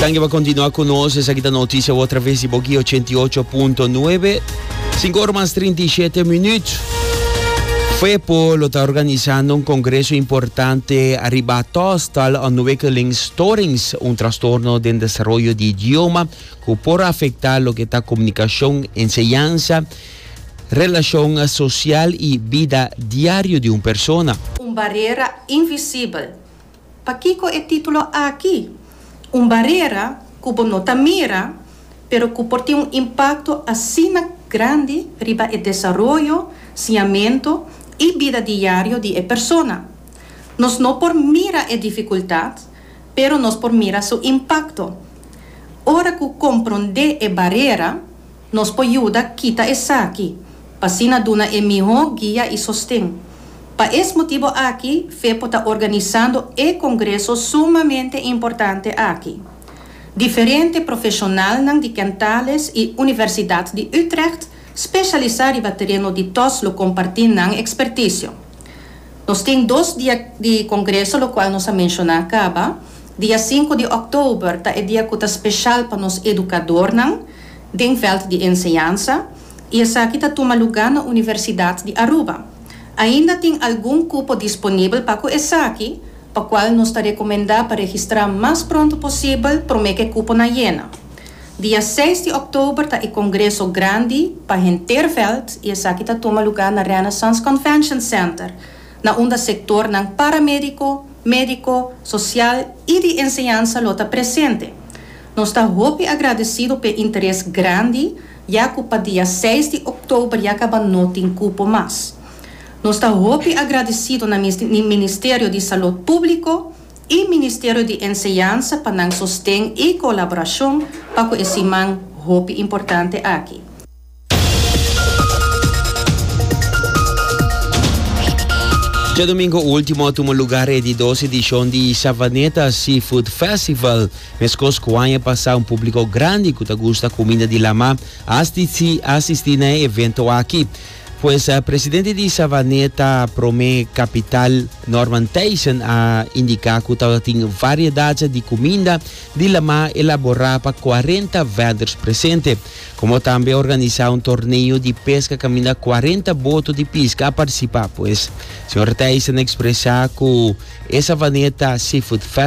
Danki pa kontinua ku nos. Esaki ta notisia wou traves di Boki 88.9. 5 ora mas 37 minuut. FEPO lo ta organisando un congreso importante arriba taastal ontwikkelingsstorings, un trastorno den desarrollo di idioma cu por afecta lo que ta comunicacion, enseñanza, relacion social y bida diario di un persona. Un barera invisibel Pakico e titulo aki? Un barera cu bo no ta mira, pero cu por tin un impacto asina grandi riba e desaroyo, siamento y bida diario di e persona. Nos no por mira e dificultad, pero nos por mira su impacto. Ora cu compronde e barera. Nos por yuda kita esaki pa asina duna e mihó guia i sosten. Pa es motibu aki fe por ta organisando e congreso sumamente importante aki. Diferente profeshonalnan di Kentales i Universidad di Utrecht specialisá riba tereno di tos lo compartí nan experticio. Nos tin dos dia di congreso locual nos a mencioná caba. Dia sinku di oktober ta e dia cu ta special pa nos educadornan. den veld di enseñansa y esaki ta tuma lugar na Universidad di Aruba. Ainda tin algun cupo disponibel pa cu esaki, pa cual nos ta recomenda pa registra mas pronto posibel prome cu e cupo na yena. Dia seis di oktober ta e congreso grandi pa henter veld y esaki ta tuma lugar na Renaissance Convention Center, na unda sectornan paramedico, medico, social y di enseñansa lo ta presente. Nos ta hopi agradecido p'e interes grandi ya cu pa dia seis di oktober ya caba no tin cupo mas. Nos ta hopi agradecido na Ministerio di Salud Publico y Ministerio di Enseñansa pa nan sosten y colaboracion pa cu e siman hopi importante aki. Djadomingo ultimo a tuma lugar e didos edishon di Savaneta Seafood Festival. Meskos ku aña pasá un publiko grandi ku ta gusta kuminda di lama a asistí na e evento aki. Pues presidente di Savaneta Promé Kapital, Norman Thijssen a indiká ku tabatin variedat di kuminda di lama elaborá pa kuarenta vendors presente. Komo tambe a organisá un torneo di peska kaminda kuarenta boto di piska a partisipá pues. Señor Thijssen a ekspresá ku e savaneta Seafood Festival.